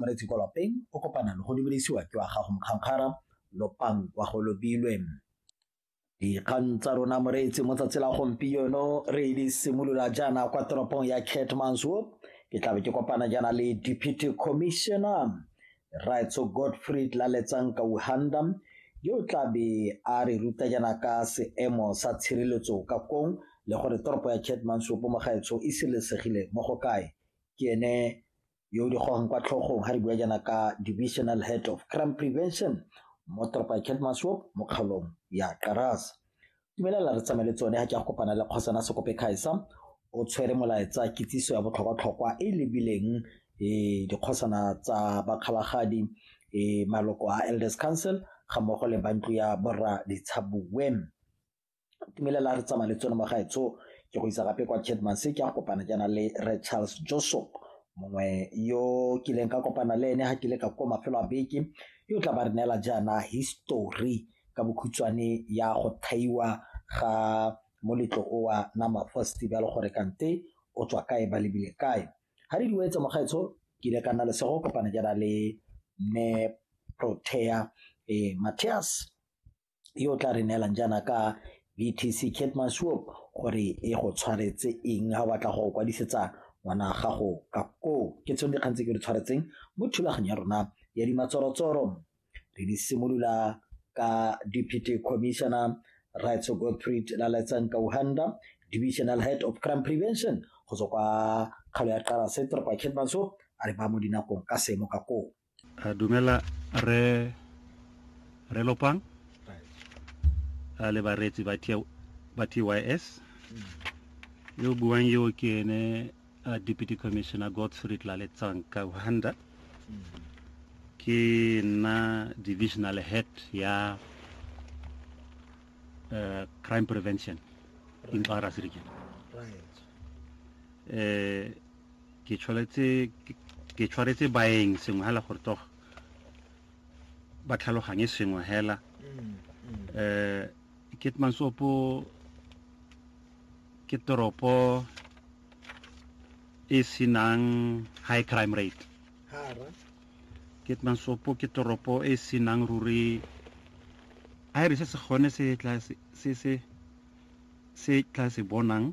moretsi kwa lapeng o kopana le go lebelisiwa ke wa gago mokgankgara lopang wa go lobilwe dikgang tsa rona moreetsi mo tsatsi la gompieno re di simolola jaana kwa toropong ya catmanswoop ke tlabe ke kopana jaana le deputy commissioner raitso godfrey tlaletsang kauhanda yo tlabe a re ruta jaana ka seemo sa tshireletso ka kong le gore toropo ya catmanswoop mo gaetsho e sireletsegile mo go kae ke ene yo o di gogang kwa tlhogong ga re bua jaana ka divisional head of crime prevention mo toropa ya kelmaswop mo kgaolong ya karas dumelela re tsamaye le tsone ga ke a kopana le kgosana sekope kgaisa o tshwere molaetsa kitsiso ya botlhokwa-tlhokwa e e lebileng um dikgosana tsa bakgalagadi um maloko a elders council ga mmogo le bantlo ya borra ditshabuweng tumelela re tsamaya le tsone mo gaetsho ke go isa gape kwa chedmans ke a kopana jaana le re charles josop mongwe yo kileng ka kopana le ene ga ke le ka ko mafelo a beke yo tla ba re neela jaana history ka bokhutshwane ya go thaiwa ga moletlo owa nama festival gore kante o tswa kae ba lebile kae ga re diwetse mogaetsho ke ile ka nna lesego kopana jaana le mme protea eh, matthias yo o tla re neelang jaana ka VTC Keetmanshoop gore e go tshwaretse eng ga o batla go kwadisetsa ngwana gago ka koo ke tsone dikgang tse ke di tshwaretseng mo thulaganyo ya rona ya dimatsorotsoro re di simolola ka deputy commissioner rights godfried laletsang kauhanda divisional head of crime prevention go tswa kwa kgalo ya qara se toropo ya keetmanshoop a re ba mo dinakong ka seemo ka koo a dumela re re lopang a le bareetsi ba ba tys mm. yo buang yo ke ene a deputy commissioner godsfrey tlaletsang ka uhanda mm. ke nna divisional head ya uh, crime prevention right. in Baras region. Right. Uh, ke tshwanetse ke tshwaretse baeng sengwe hela gore toga ba tlhaloganye sengwe hela mm, mm. eh ketmansopo ke toropo e senang high crime rate ketmansopo ke toropo e senang ruri a e re se se gone se tla se se se tla se bonang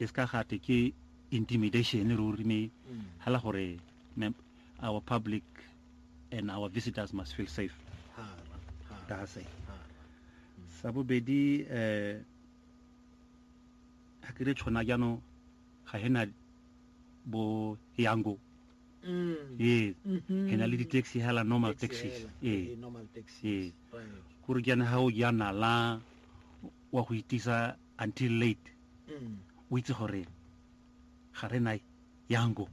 e se ka gate ke intimidation ruri me hala gore our public and our visitors must feel safe ka se sa bobedi eh ha ke re tshwana jaanong ga he na bo yango mm. yes mm-hmm. he na le di-taxi hela normal taxis ee ee kore jaana ga o jaana la wa go itisa until late o itse gore ga re na yango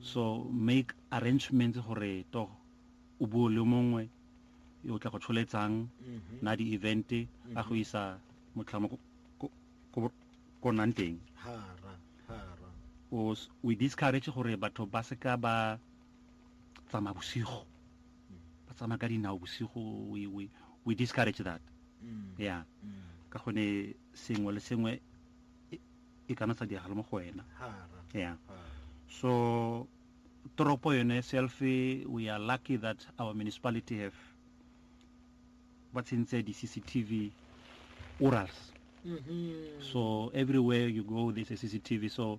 so make arrangements gore to o buo le mongwe yo o tla go tsholetsang mm-hmm. na di-event a mm-hmm. go isa motlhamo ko nang teng we discourage gore batho ba seka ba tsamaya bosigo ba tsamaya ka dinao bosigo we, we, we discourage that mm. yeah mm. ka gone sengwe le sengwe e, e kana sa diragala mo go wena yeah so toropo yone self we are lucky that our municipality have ba tsentse di-cctv orals mm -hmm. so everywhere you go there's a cctv so